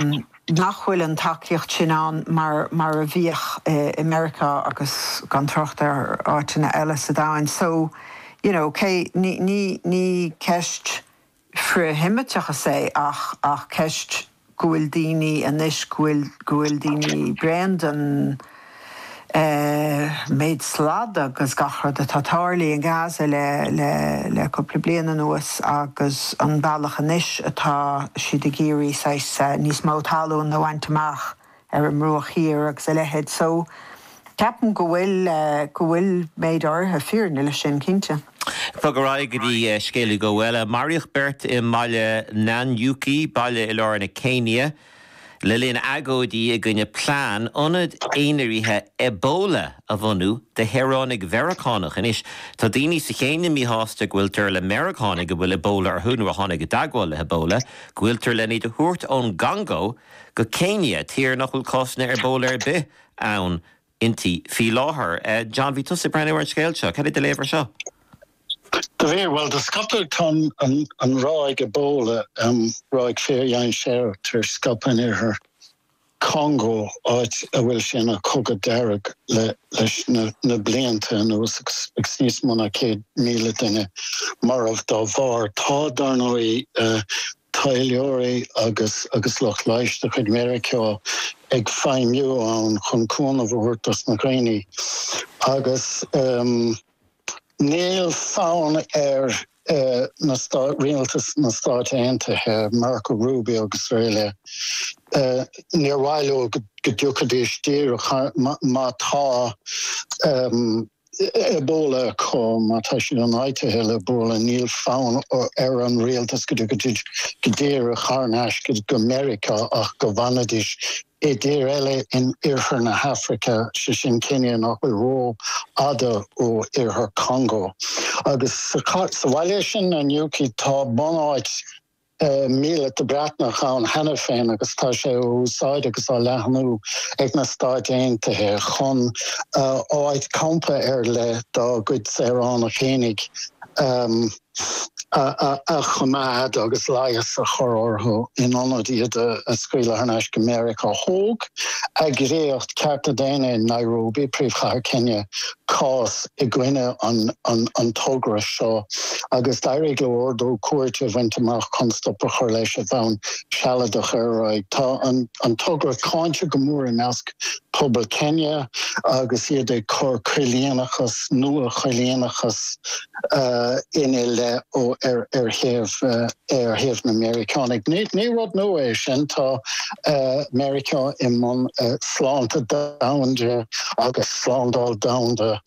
nach bhfuil an tacaíocht sin ann mar mar a bhíodh i Meiriceá agus gan trácht ar áiteanna eile sa domhain. So, you know, cé, ní, ní, ní ceist frith-Sheimiteachais é ach, ach ceist go bhfuil daoine anois, go bhfuil, go bhfuil daoine bréan den. an méid slad agus gach rud atá tarlaithe i nGaza le le le cúpla bliain anuas agus an bealach anois atá siad ag iarraidh saghas níos mó talún a bhaint amach ar an mBruach Thiar agus a leithéid so ceapaim go bhfuil go bhfuil méid áirithe fírinne leis sin cinnte. Ach ar aghaidh go dtí scéal Hugh eile. Maraíodh beirt i mbaile Nanyuki, baile i lár na Céinia. Le linn agóidí i gcoinne plean ionad aonraithe Ebola a bhunú do shaoránaigh Mheiriceánach anois, tá daoine sa Chéinia míshásta go bhfuiltear le Meiriceánaigh a bhfuil Ebola orthu nó a tháinig i dteagmháil le hEbola go bhfuiltear lena iad a thabhairt ón gCongó go Céinia, tír nach bhfuil cásanna Ebola ar bith ann inti faoi láthair. John, bhí tusa ag breathnú ar an scéal seo, cad é do léamh air seo? Bhuel, do scaip, tá an ráig Ebola, ráig fíordhainséarach tar éis scaipeadh in oirthear Chongó, áit a bhfuil sé ina chogadh dearg leis na blianta anuas agus níos mó ná 100,000 duine marbh dá bharr. Tá, dar ndóigh, taidhleoirí agus agus lucht leighis de chuid Mheiriceá ag feidhmiú ann chun cúnamh a thabhairt dos na daoine agus níl fonn ar rialtas na Stát Aontaithe, Marco Rubio agus araile, níor mhaith leo go dtiocfaidís díreach má tá. Ebola acu, má tá siad ionfhabhtaithe le Ebola, níl fonn ar an rialtas go dtiocfaidís go díreach thar n-ais go Meiriceá ach go bhfanfaidís i dtír eile in iarthar na hAfraice, sé sin Céinia nach bhfuil ró-fhada ó iarthar Chongó. Agus sa bhaile sin, Nanyuki, tá bunáit míleata Breatnach ann cheana féin agus tá sé á úsáid agus á leathnú ag na Stáit Aontaithe chun áit campa ar leith dá gcuid saoránach féinig a choimeád agus leigheas a chur orthu in ionad iad a scaoileadh thar n-ais go Meiriceá. Thóg eagraíocht cearta daonna in Nairobi, príomhchathair Céinia, cás i gcoinne an togra seo agus d'éirigh leo ordú cúirte a bhaint amach chun stop a chur leis ar bhonn sealadach ar a laghad. Tá an togra cáinte go mór i measc pobal Céinia agus iad ag cur coilíneachas, nua-choilíneachas, ina leith ar thaobh na Meiriceánaigh. Ní rud nua é sin. Tá. Meiriceá i mbun sláinte domhanda agus slándáil domhanda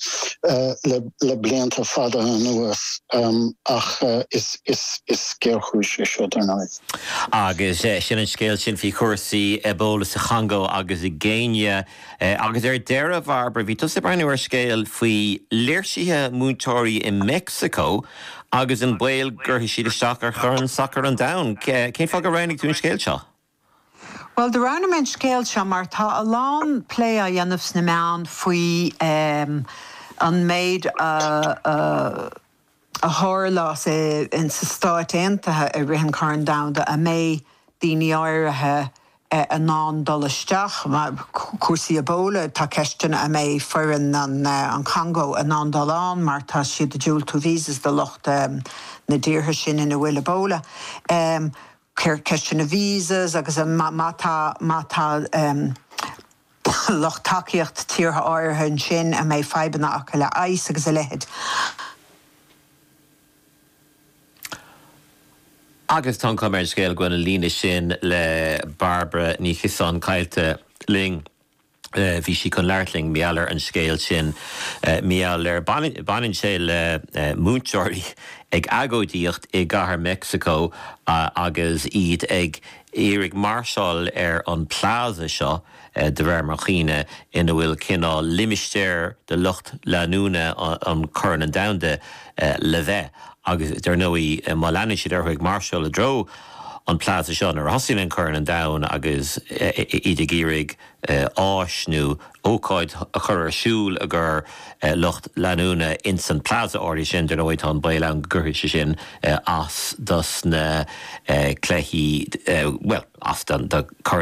le blianta fada anuas ach is géarchúiseach é seo, dar ndóigh. Agus sin an scéal sin faoi chúrsaí Ebola sa Chongó agus i gCéinia. Agus ar deireadh, Bhairbre, bhí tusa ag breathnú ar scéal faoi léirsithe múinteoirí i Meicsiceo agus an baol go gcuirfidh siad isteach ar Chorn Sacair an Domhain. Cén fáth gur roghnaigh tú an scéal seo? Bhuel, do roghnaigh mé an scéal seo mar tá a lán plé á dhéanamh sna meáin faoi an méid a tharlós sna Stáit Aontaithe i rith an Chorn Domhanda a mbeidh daoine áirithe in ann dul isteach, cúrsaí Ebola, tá ceisteanna a mbeidh foireann an Chongó in ann dul ann mar tá siad ag diúltú visas do lucht na dtíortha sin ina bhfuil Ebola. ceisteanna visas agus an má tá má tá lucht tacaíocht tíortha áirithe ansin a mbeidh fadhbanna acu le ICE agus a leithéid. Agus tá an chuma ar an scéal go bhfuil an líne sin le Bairbre Ní Chiosáin caillte linn. bhí sí chun labhairt linn, i ngeall ar an scéal sin, i ngeall ar, baineann sé le múinteoirí ag agóidíocht i gcathair Mheicsiceo agus iad ag iarraidh máirseáil ar an plaza seo, de réir mo chuimhne, ina bhfuil cineál limistéar do lucht leanúna an Chorn Domhanda le bheith agus, dar ndóigh, má leanann siad orthu ag máirseáil i dtreo an plaza seo nuair a thosaíonn an Corn an Domhain agus iad ag iarraidh áis nó ócáid a chur ar siúl i gcomhair lucht leanúna ins an plaza áirithe sin. Dar ndóigh tá an baol ann go gcuirfidh sé sin as dos na cluichí, bhuel as do Chorn